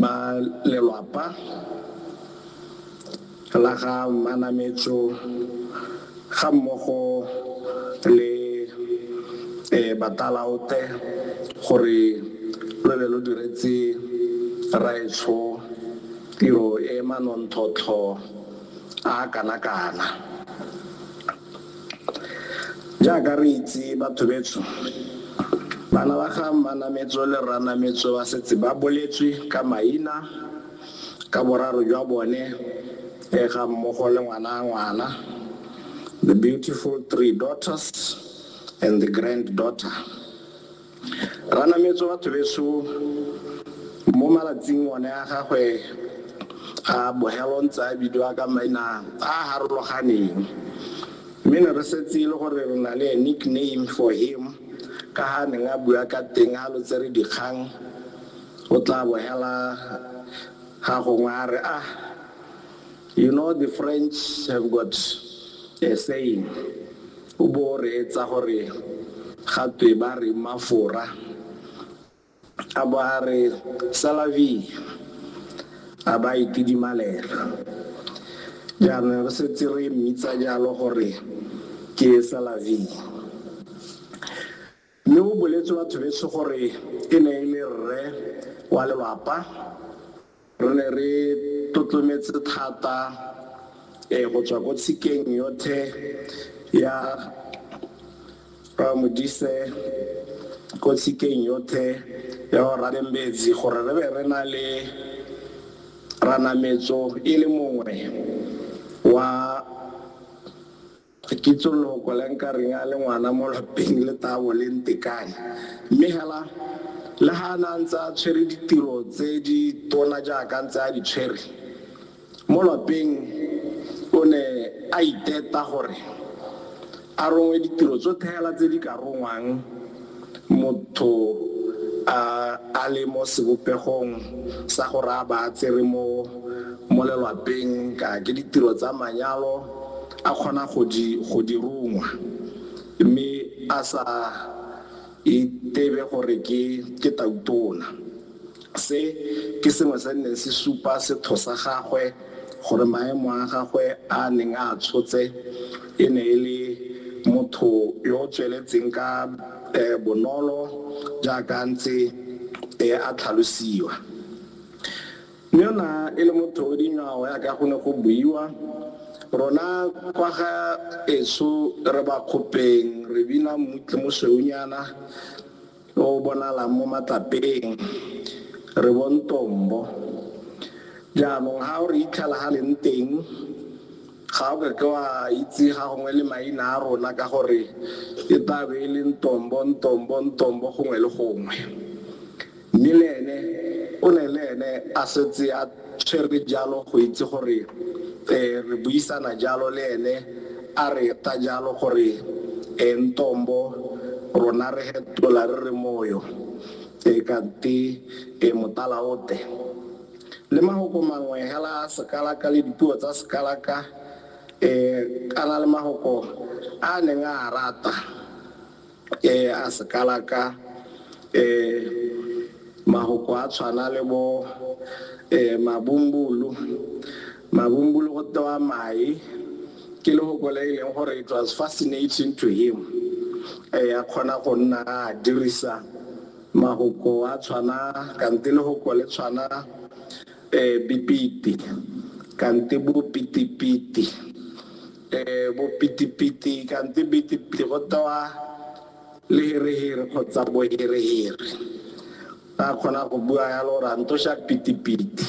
Ba lelwapa la ga Manametso ga mmogo le Batalaote gore lo be lo diretse Rraetsho tiro e e manontlhotlho a a kana-kana. Jaaka re itse batho betsho, bana ba ga Mmanametso le Rranametso ba setse ba boletswe ka maina, ka boraro jwa bone e ga mmogo le ngwana ngwana, the beautiful three daughters and the grand daughter. Ranametse batho beso mo malatsing one a gagwe a bogelo ntse a bidiwa ka maina a a harologaneng mme ne re setse e le gore re na le a nickname for him ka ha neng a bua ka teng a lo tsere dikgang o tla bogela ga gongwe a re ah you know the french have got a saying O bo o reetsa gore ga twe ba reng mafora, a bo a re c'est la vie, a ba itidimalela. Jaanong re setse re mmitsa jalo gore ke c'est la vie. Mme go boletswe batho betsho gore e ne e le rre wa lelwapa. Re ne re tlotlometse thata eh go tswa ko tshikeng yothe ya Rra Modise, ko tshikeng yothe ya bo Rra Bembedzi gore re be re na le Ranametso e le mongwe wa Ga ke itse loko le nka reng a le ngwana mo lapeng le tabo le ntekane. Mme hela, le ha a ne a ntse a tshwere ditiro tse di tona jaaka a ntse a di tshwere mo lapeng, o ne a iteta gore a rongwe ditiro tsotlhe hela tse di ka rongwang motho a a le mo sebopegong sa gore a ba a tsere mo mo lelwapeng, ka ke ditiro tsa manyalo, a kgona go di, go di rongwa mme a sa itebe gore ke, ke tautona. Se ke sengwe se neng se supa setho sa gagwe gore maemo a gagwe a neng a tshotse e ne e le motho yo o tsweletseng ka bonolo jaaka a ntse a tlhalosiwa. Yona e le motho o dinywao yaka go ne go buiwa, rona kwa ga eso re ba kgopeng re bina mmutle mosweunyana o o bonalang mo matlapeng, re bo Ntombo. Jaanong ha o re itlhela ha leng teng, ga o kake wa itse ga gongwe le maina a rona ka gore e tla be e le Ntombo, Ntombo, Ntombo gongwe le gongwe. Mme le ene o ne le ene a setse a tshwere jalo go itse gore re buisana jalo le ene a re ta jalo gore e Ntombo rona re hetola re re Moyo e kante e Motalaote. Le mahoko mangwe hela a Sekalaka le dipuo tsa Sekalaka e kana le mahoko a a neng a a rata. ke a sekala ka mahoko a tshwana le bo mabumbulu mabumbulu go tewa mae ke lehoko le e leng gore it was fascinating to him a kgona go nna a dirisa mahoko a tshwana kante lehoko le tshwana bipiti kante bo pitipiti E, bopitipiti kante pitipiti go tewa leherehire kgotsa boherehire. Ra kgona go bua yalo gore a ntosha pitipiti.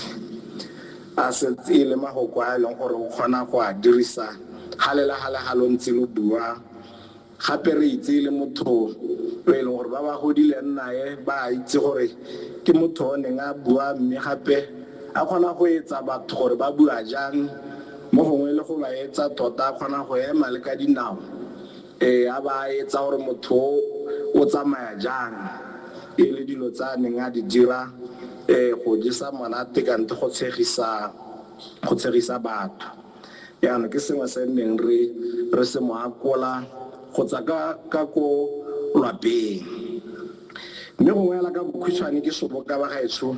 A setse e le magoko a e leng gore o kgona go a dirisa ga le la ga le ga lo ntse lo bua Gape re itse e le motho yo e leng gore ba ba godileng nae ba a itse gore ke motho o neng a bua mme gape a kgona go etsa batho gore ba bua jang, mo gongwe le go ba etsa tota a kgona go ema le ka dinao, ee, a ba a etsa gore motho o o tsamaya jang. E le dilo tse a neng a di dira, ee, go jesa monate kante go tshegisa, go tshegisa batho. Jaanong ke sengwe se nneng re re se mo akola go tsa ka ka ko lwapeng. Mme gongwe hela ka bokhutshwane ke soboka ba gaetsho